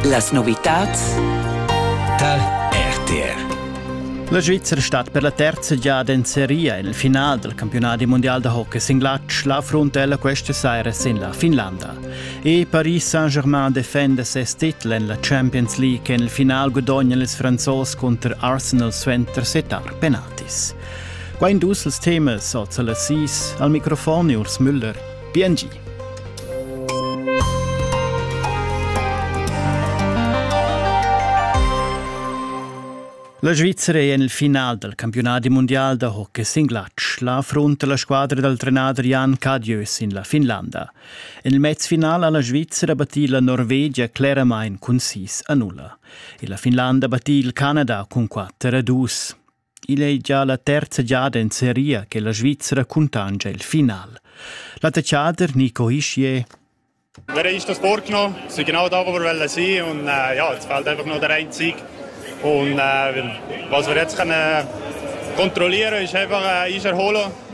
Las novitads tal RTR. La Svizzera stat per la terza giada in seria il final del campionati mondial da hockey sin glatsch la frontella questa saira sin la Finlanda. E Paris Saint-Germain defenda ses titel en la Champions League che il final gudognano ils Franzos contro Arsenal suenter setar penaltis. Qua in dus ils temas oz alla sis al microfon Urs Müller. Biengi. La Svizzera è en il final dal campiunadi mundial da hockey sin glatsch. La affrunta la squadra dal trenader Jan Cadieu sin la Finlanda. En il mezfinal ha la Svizzera battì la Norvegia cleramain cun sis a nulla. E la Finlanda battì il Canada cun 4 a 2. Igl ei gia la terza giada en seria che la Svizra cuntanscha il final. L'attaccader Nico Ischier Wir haben das vorgenommen, es war genau da, wo wir wollen sein und äh, ja, es fehlt einfach noch der eine Sieg. Und äh, was wir jetzt können kontrollieren ist einfach äh, Eis erholen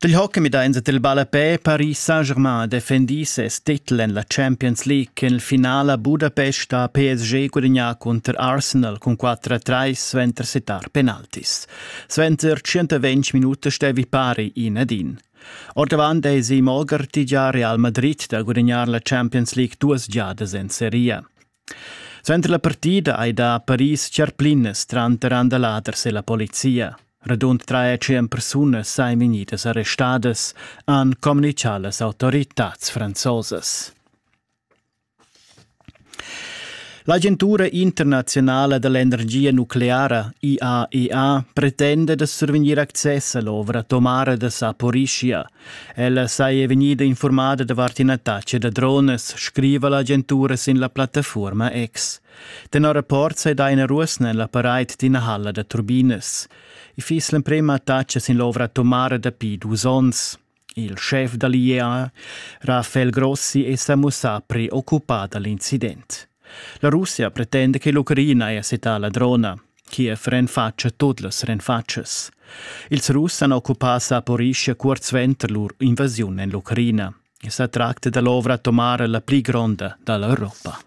Dil hockey midains et il ballapè Paris Saint-Germain defendi ses titel en la Champions League cun il finale Budapest ha PSG gudagnà cunter Arsenal cun 4-3 suenter sittar penaltis. Suenter 120 minutas stevi pari in ed in. Ordavant eisi Mogarty gia Real Madrid da gudagnar la Champions League duas giadas en seria. Suenter la partida ei da Paris tscharplinas tranter andaladers e la polizia. Radund tre e tschien persunas ein vegnidas arrestadas, han communicau las autoritads franzosas. L'agentura internazionala dell'energia nucleara IAEA pretende da survegnir access all'ovra atomara de Saporischia – Ella saja vegnida informada davart ina taxa da dronas, scriva l'agentura sin la plattafuorma X. Tenor rapport sei da ina ruosna ella pareit d'ina halla da turbinas. I fiss l'emprema taxa sin l'ovra atomara dapi dus onns. Il chef dall'IEA, Rafael Grossi, è sa mussà preoccupà dall'incident. La Russia pretende che l'Ucraina haja setà la drona. Kiev renfatscha tut las renfatschas. Ils Russ han occupà Saporischia cuort suenter lur invasiun en l'Ucraina. I sa tracta da l'ovra atomara la pli gronda da l'Europa.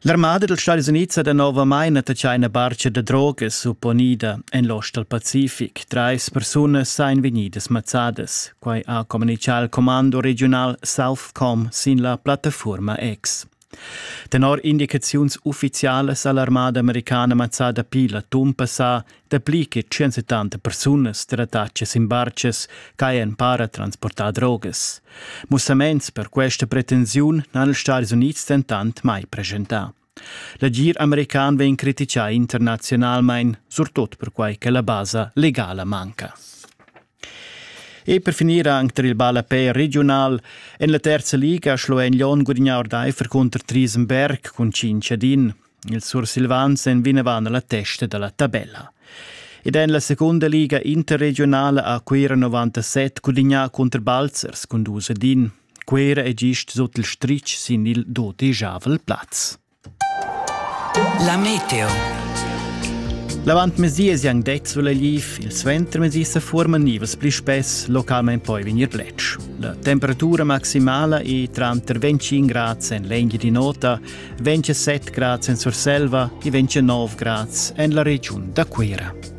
L'armada dels Stadis Units ha novamain attaccà ina barca da drogas supponida en l'ost dal Pacific. Trais persunas sain vegnidas mazzadas. Quai ha communichà il commando regional Southcom sin la plattafurma X. Tenor indicaziuns uffizialas ha l'armada americana mazzà dapi l'atun passà dapli che 170 persunas trattatschas in bartgas ch'hajan en para transportà drogas. Mussaments per questa pretensiun n'han ils Stati Unids dentant mai presentà. L'agir american vegn criticà internazionalmain, surtut perquai che la basa legala manca. E per finir anc tar il ballapè regiunal. En la terza liga Schloen Lyon gudagnà ordaifer cunter Triesenberg cun 5 ad 1. Il Sursilvans en vinavant la testa da la tabella. Ed en la seconda liga interregionale a Cuira 97 gudagnà cunter Balzers cun 2 ad 1. Cuira è gist sut il stritg sin il dodejavel plaz. La meteo. L'avantmesi es jan det sulla liv, il suentermesi se forma nivas pli spess localment poi vegnir letg. La temperatura maximala è tranter 25 grad en l'engia di nota, 27 grad en Surselva e 29 grad en la regiun da Cuira.